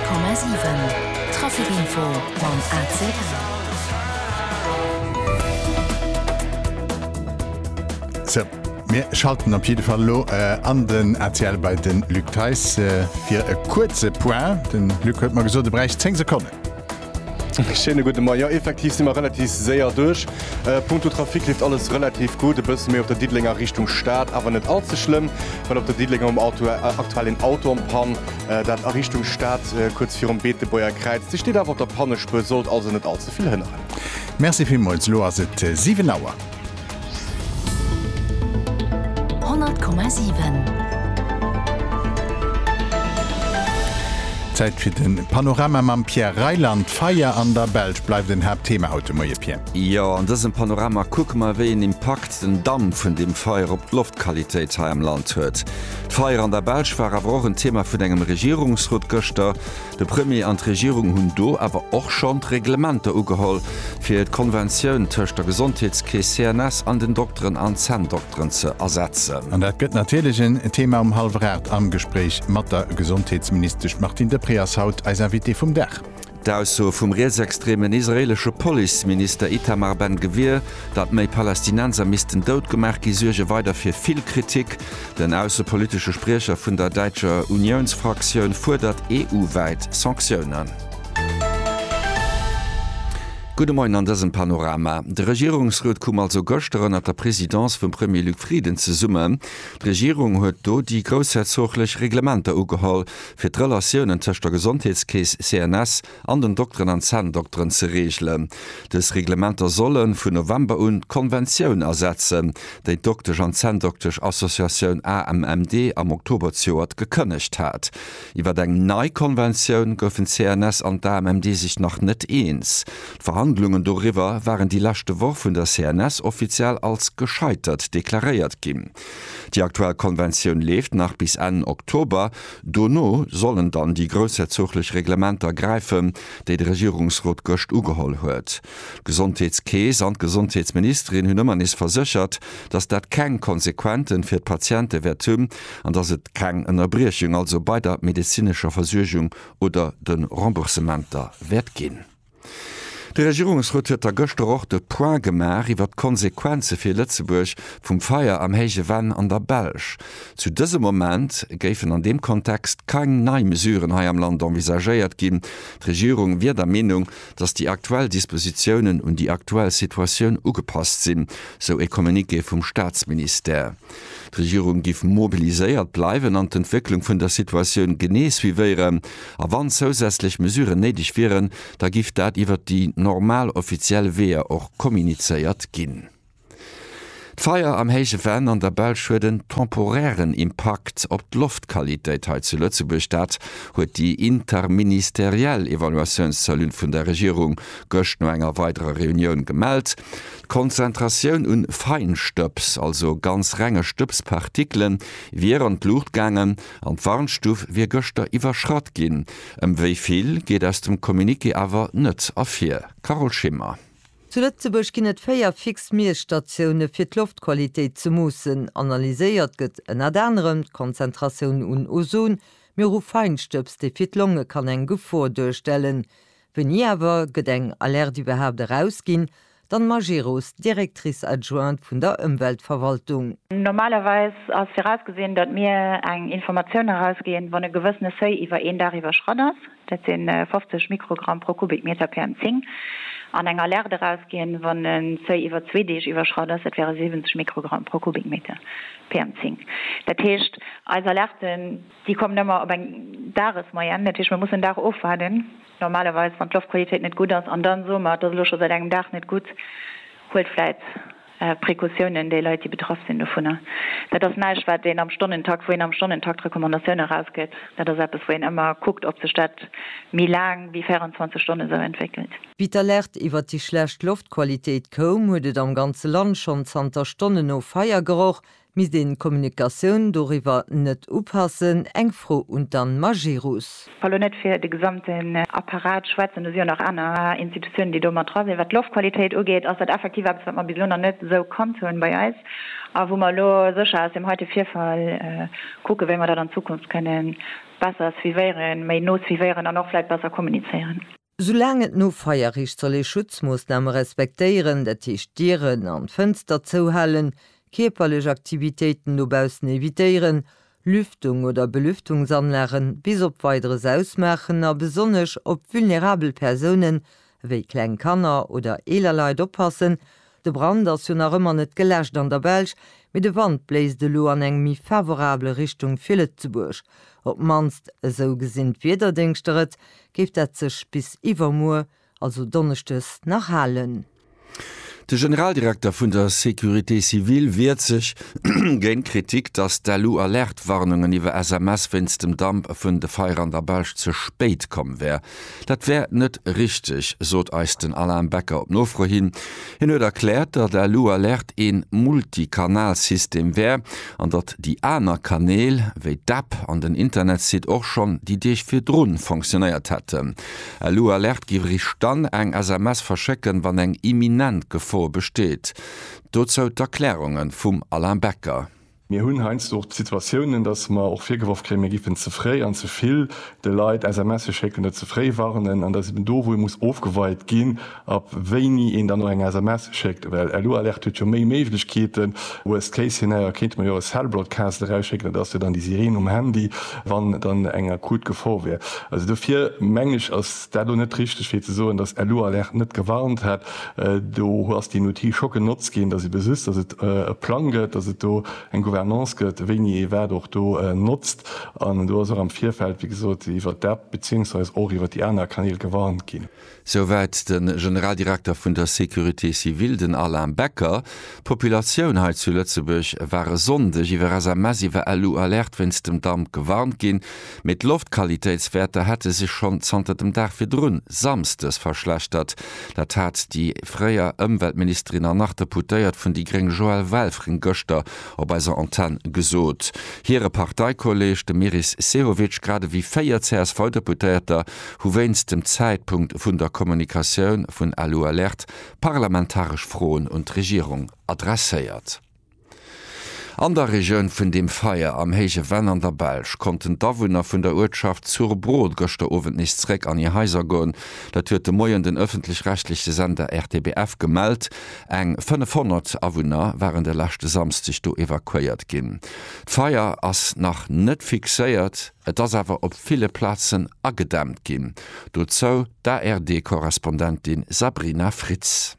Komma 7 Trafikinfo mam ACL. Sou, mir schalten op jidde Fall elo an den ACL bei de Luc Theis fir e kuerze Point. Den Luc huet mer gesot, e bräicht 10 Sekonnen. Schéine gudde Moien. Jo, effektiv si mer relativ séier duerch. Punkto Trafic leeft alles relativ gutt. E bësse méi op der Diddelenger Richtung Stad, awer net all ze schlëmm, well op der Diddelenger um Auto aktuell een Auto an d'Pann, dat a Richtung Stad kuerz virum Beetebuerger Kräiz. Dee steet awer op der Pannespuer, sollt also net all ze vill hënneren. Merci villmools. Elo ass et 7 Auer. Zäit fir de Panorama mam Pierre Reyland. D'Feier an der Belsch bleift en Haaptthema haut de Moie, Pierre. Jo, an dësem Panorama kucke mer, wéi een Impakt den Damp vun deem Feier op d'Loftqualitéit hei am Land huet. D'Feier an der Belsch war awer och en Thema vun engem Regierungsrot gëschter. De Premier an d'Regierung hunn do awer och schonn d'Reglementer ugeholl, fir d'Konventioun tëscht der Gesondheetskeess CNS an den Dokteren an Zänndokteren ze ersetzen. An dat gëtt natierlech en Thema um Hallwer 8 am Gespréich mat der Gesondheetsministesch. D'Martine Deprez ass haut eis Invitée vum Dag. D'Ausso vum rietsextremen israeelesche Policeminister Itamar Ben-Gvir, datt méi Palästinenser missten dout gemaach ginn, suerge weider fir vill Kritik. Den aussepolitesche Spriecher vun der däitscher Uniounsfraktioun fuerdert EU-wäit Sanktiounen. Gudde Moien an dësem Panorama. De Regierungsrot koum also gëschter ënnert der Presidence vum Premier Luc Frieden zesummen. D'Regierung huet do déi groussherzoglech Reglementer ugeholl, fir d'Relatiounen tëscht der Gesondheetskeess CNS an den Dokteren an Zänndokteren ze reegelen. Dës Reglementer solle vun November un d'Konventioun ersetzen, déi d'Doktesch an Zänndoktesch Associatioun AMMD am Oktober zejoert gekënnegt hat. Iwwer eng nei Konventioun goufen d'CNS an d'AMMD sech nach net eens. D'Verhandlungen doriwwer waren déi leschte Woch vun der CNS offiziell als gescheitert deklaréiert ginn. Déi aktuell Konventioun leeft nach bis Enn Oktober. Dono sollen dann déi groussherzoglech Reglementer gräifen, déi de Regierungsrot gëscht ugeholl huet. D'Gesondheetskeess an d'Gesondheetsministerin hunn ëmmer nees verséchert, datt dat keng Konsequente fir d'Patiente wäert hunn an datt et keng Ënnerbriechung also bei der medezinescher Versuergung oder de Remboursementer wäert ginn. De Regierungsrot huet da gëschter och de Point gemaach iwwert d'Konsequenze fir Lëtzebuerg vum Feier am Héije Venn an der Belsch. Zu dësem Moment géifen an deem Kontext keng nei Mesuren hei am Land envisagéiert ginn. D'Regierung wier der Meenung, datt déi aktuell Dispositiounen un déi aktuell Situatioun ugepasst sinn, sou e Communiqué vum Staatsministère. D'Regierung giff mobiliséiert bleiwen an d'Entwécklung vun der Situatioun genee suivéieren. A wann zousätzlech Mesuren néideg wieren, da giff dat iwwert déi normal offiziell Weeër och kommunizéiert ginn. D'Feier am Héije Venn an der Belsch huet en temporären Impakt op d'Loftqualitéit hei zu Lëtzebuerg. Dat huet déi interministeriell Evaluatiounscellule vun der Regierung gëscht no enger weiderer Reunioun gemellt. D'Konzentratioun un Feinstëbs, also ganz renge Stëbspartikelen, wier an d'Luucht gaangen an d'Warnstuf wier gëschter iwwerschratt ginn. Ëm wéi vill geet aus dem Communiqué awer net ervir. Carole Schimmer. Zu Lëtzebuerg ginn et véier fix Miesstatioune fir d'Loftqualitéit ze moossen. Analyséiert gëtt ënnert anerem d'Konzentratioun un Ozon, mee och u Feinstëbs, dee fir d'Longe kann eng Gefor duerstellen. Wéini awer gëtt eng Alerte iwwerhaapt erausginn? D'Anne Majerus, Directrice adjointe vun der Ëmweltverwaltung. Normalerweis ass virausgesinn, datt mir eng Informatioun erausginn, wann e gewëssene Seuil iwwer een Dag iwwerschratt ass, dat si 50 Mikrogramm pro Kubikmeter PM10, an eng Alerte erausginn, wann e Seuil iwwer zwee Deeg iwwerschratt ass, dat wäre 70 Mikrogramm pro Kubikmeter PM10. Dat heescht, eis Alerten Déi kommen ëmmer op eng Dagesmoyenne. Dat heescht, mir mussen den Dag ofwaarden, normalerweis, wann d'Loftqualitéit net gutt ass. An da soe mer, et ass elo scho säit engem Dag net gutt, huelt vläicht Precautiounen, déi Leit, déi betraff sinn dovunner. Dat ass näischt, wat een am Stonnentakt, wou een am Stonnentakt Recommandatioune erausgëtt. Dat ass eppes, wou een ëmmer kuckt, ob sech dat méi laang wéi 24 Stonne sou entwéckelt. Wéi d'Alerte iwwert déi schlecht Loftqualitéit koum, huet et am ganze Land schonn zanter Stonnen no Feier geroch. Misst een d'Kommunikatioun doriwwer net upassen? Eng Fro un d'Anne Majerus. Well elo net fir de gesamten Apparat schwätzen, do si jo nach aner Institutiounen, déi do mat dra sinn. Wat d'Loftqualitéit ugeet, ass dat effektiv eppes, wat mer bis elo nach net esou kannt hunn bei eis a wou mer elo sécher aus deem heite Virfall kucken, wéi mer dat an Zukunft kënnen besser suivéieren, méi no suivéieren an och vläicht besser kommunizéieren. Soulaang et no Feierrecht soll ee Schutzmoossname respektéieren, dat heescht d'Dieren an d'Fënster zouhalen, kierperlech Aktivitéiten dobaussen evitéieren, Lüftung oder Belüftungsanlagen bis op Weideres ausmaachen a besonnesch op vulnerabel Persounen ewéi kleng Kanner oder eeler Leit oppassen, De Brand ass jo nach ëmmer net geläscht an der Belsch, mee de Wand bléist elo an eng méi favorabel Richtung fir Lëtzebuerg. Op d'mannst esou gesinn d'Wiederdéngschter et, géif dat sech bis iwwermuer, also Donneschdes, nach halen. De Generaldirekter vun der Sécurité civile wiert sech géint d'Kritik, datt d'ALU-Alertwarnungen iwwer SMS wéinst dem Damp vun de Feier an der Belsch ze spéit komm wär. Dat wär net richteg, sot eis den Alain Becker op Nofro hin. Hien huet erkläert, datt Alu Alert ee Multikanalsystem wär an datt déi aner Kanäl, wéi d'App an den Internetsite och schonn déi Deeg virdru fonctionéiert hätten. Alu Alert géif eréischt dann eng SMS verschécken, wann eng imminent Gefor besteet. Dozou d'Erklärunge vum Alain Becker. Mir hunn heiansdo och d'Situatiounen, datt mer och virgeworf kréien, mir géifen ze fréi an ze vill de Leit SMSe schécken, net ze fréi warnen. An dat ass eben do, wou ee muss ofgeweit ginn, ab wéini een dann och eng SMS schéckt. Well LU Alert huet jo méi Méiglechkeeten. Worst case scenario kéinte mer jo e Cell Broadcast erausschécken, dat ass jo dann déi Sireen um Handy, wann dann eng akut Gefor wier. Also dofir mengen ech, ass. War do net richteg fir ze soen dass Elo Alerte net gewarnt hätt? Do hu ass déi Outil scho genotzt ginn, dass ee besisst dass et e Plang gëtt, dass et do eng Gouvernance gëtt, wéini ee wat och do notzt. An do ass och am Virfeld, wéi gesot, iwwert d'App beziéungsweis och iwwert déi aner Kanäl gewarnt ginn. Souwäit de Generaldirekter vun der Sécurité civile, den Alain Becker. D'Populatioun hei zu Lëtzebuerg war e Sonndeg iwwer SMS, iwwer Elo Alerte wéinst dem Damp gewarnt ginn. Mee d'Loftqualitéitswäerter hätte sech schonn zanter dem Dag virdrun, Samsdes, verschlechtert. Dat hat déi fréier Ëmweltministerin an nach Deputéiert vun déi gréng Joëlle Welfring gëschter op eiser Antenn gesot. Hire Parteikolleeg, de Meris Sehovic, grad ewéi véier CSV-Deputéierter hu wéinst dem Zäitpunkt vun der Kommunikatioun vun Alu Alert parlamentaresch Froen un d'Regierung adresséiert. An der Regioun vun deem Feier am héije Venn an der Belsch konnten d'Awunner vun der Uertschaft Zurbrohl gëschter Owend nees zréck an hir Haiser goen. Dat huet de Moien den ëffentlech-rechtleche Sender RTBF gemellt. Eng 500 Awunner waren de leschte Samsdeg do evakuéiert ginn. D'Feier ass nach net fixéiert, et ass awer op ville Plazen agedämmt ginn. Dozou d'ARD-Korrespondentin Sabrina Fritz.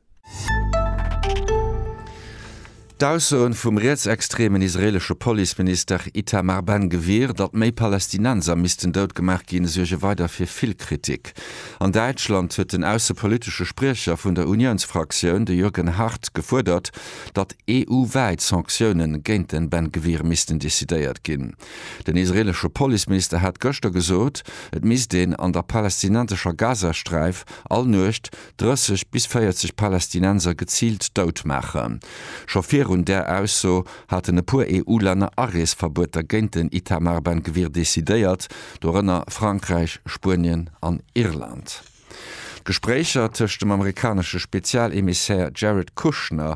D'Aussoen vum rietsextremen israelesche Policeminister Itamar Ben-Gvir, datt méi Palästinenser missten dout gemaach ginn, suerge weider fir vill Kritik. An Däitschland huet den aussepolitesche Spriecher vun der Uniounsfraktioun, de Jürgen Hart, gefuerdert, datt EU-wäit Sanktiounen géint den Ben-Gvir missten decidéiert ginn. Den israelesche Policeminister hat gëschter gesot, et misst een an der palästinensescher Gazasträif all Nuecht 30 bis 40 Palästinenser geziilt dout maachen. Scho virun där Ausso haten e puer EU-Länner Areesverbueter géint den Itamar Ben Gvir decidéiert, dorënner Frankräich, Spuenien an Irland. D'Gespréicher tëscht dem amerikanesche Spezialemissaire Jared Kushner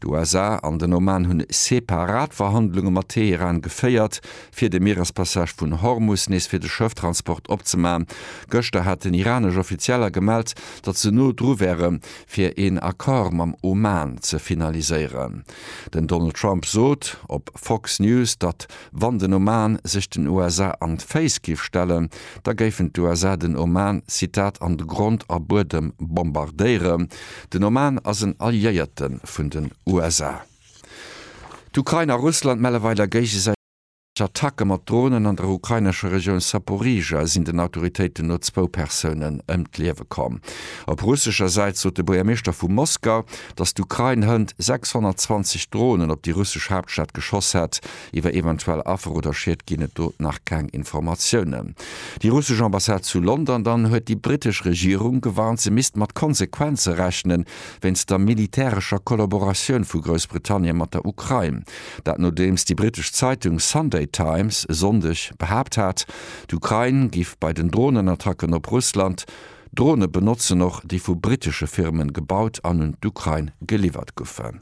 D'USA an den Oman hunn separat Verhandlunge mat Teheran geféiert, fir de Mierespassage vun Hormus nees fir de Schëfftransport opzemaachen. Gëschter haten iranesch Offizieller gemellt, datt se no dru wäre fir een Accord mam Oman ze finaliséieren. Den Donald Trump sot op Fox News, datt Wann den Oman sech den USA an d'Féiss géif stellen, da géifen d'USA den Oman, Zitat, an Grond a Buedem bombardéieren. Den Oman ass en Alliéierte vun den USA. D'Ukrain a Russland melle weider géigesäiteg Attacke mat Dronen. An der ukrainescher Regioun Saporizhzhia sinn den Autoritéiten no zwou Persounen ëm d'Liewe komm. Op russescher Säit sot de Buergermeeschter vu Moskau, datt d'Ukrain hënt 620 Dronen op déi russesch Haaptstad geschoss hätt. Iwwer eventuell Affer oder Schied ginn et do nach keng Informatiounen. Déi russesch Ambassade zu London dann huet déi brittesch Regierung gewarnt, se misst mat Konsequenze rechnen, wéinst der militärescher Kollaboratioun vu Groussbritannien mat der Ukrain. Dat nodeems déi brittesch Zeitung Sunday Times e Sonndeg behaapt hat, d'Ukrain géif bei den Dronenattacken op Russland, D'Drone benotzen och déi vu brittesche Firmen gebaut an un d'Ukrain geliwwert guffen.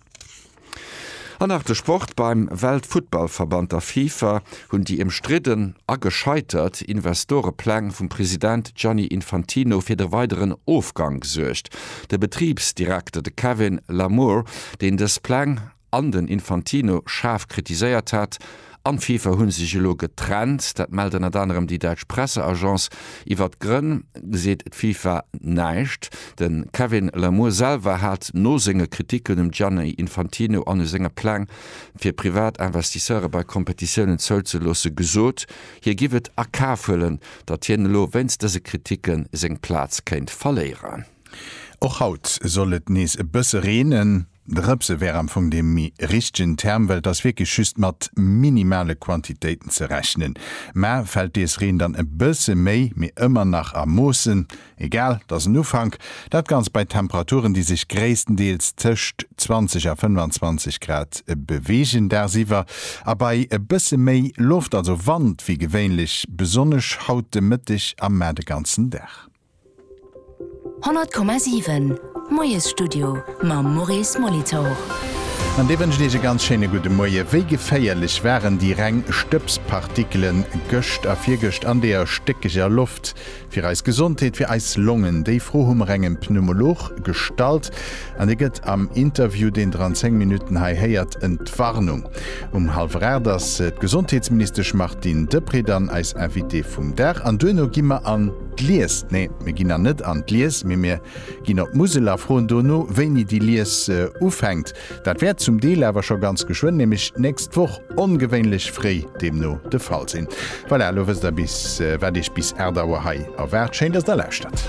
An nach de Sport, Beim Weltfuttballverband, der FIFA, hunn déi ëmstridden a gescheitert Investorepläng vum President Gianni Infantino fir de weideren Ofgang gesuergt. De Betribsdirekter, de Kevin Lamour, deen dës Pläng an den Infantino schaarf kritiséiert hat, an d'Fifa hu sech elo getrennt. Dat mellt ënnert anerem déi däitsch Presseagence. Iwwer d'Grënn seet d'Fifa näischt. De Kevin Lamour selwer hat no senge Kriticken um Gianni Infantino an u senge Pläng, fir privat Investisseure bei Kompetitiounen zouzeloossen, gesot, hie giff et a Kaf huelen, datt hien elo wéinst dëse Kriticke seng Plaz kéint verléieren. Och haut soll et nees e bësse reenen. Drëpse wär am Fong dee méi richtegen Term, well et ass wierklech just mat minimale Quantitéiten ze rechnen. Mä fält dees Reen dann e bësse méi, mee ëmmer nach a Moossen, egal, et ass en Ufank, dat Ganzt bei Temperaturen, déi sech gréisstendeels tëscht 20 a 25 Grad beweegen dagsiwwer a bei e bësse méi Loft, also Wand, wéi gewéinlech, besonnesch haut de Mëtteg a mar de ganzen Dag. 100,7 Moiesstudio mam Maurice Molitor. An dir wënscht iech e ganz schéine gudde Moie. Wéi geféierlech waren déi reng Stëbspartikelen gëscht a virgëscht an deeër stéckeger Loft fir eis Gesondheet, fir eis Longen? Déi Fro hu mer engem Pneumolog gestallt an dir gëtt am Interview, deen der an 10 Minutten hei héiert, Entwarnung. Um halwer 8 ass d'Gesondheetsministesch Martine Deprez dann eis Invitée vum Dag an duerno gi mer an. D'Lies, nee, mir ginn dann net an d'Lies, mee mir ginn op d'Musel a froen dono, wéini déi Lies ufänkt. Dat wäert zum Deel awer scho ganz geschwënn, nämlech d'nächst Woch, ongewéinlech fréi deemno, de Fall sinn. Voilà, elo wësst der, wat Iech bis 8 Auer hei erwaart. Schéin, dass der lauschtert.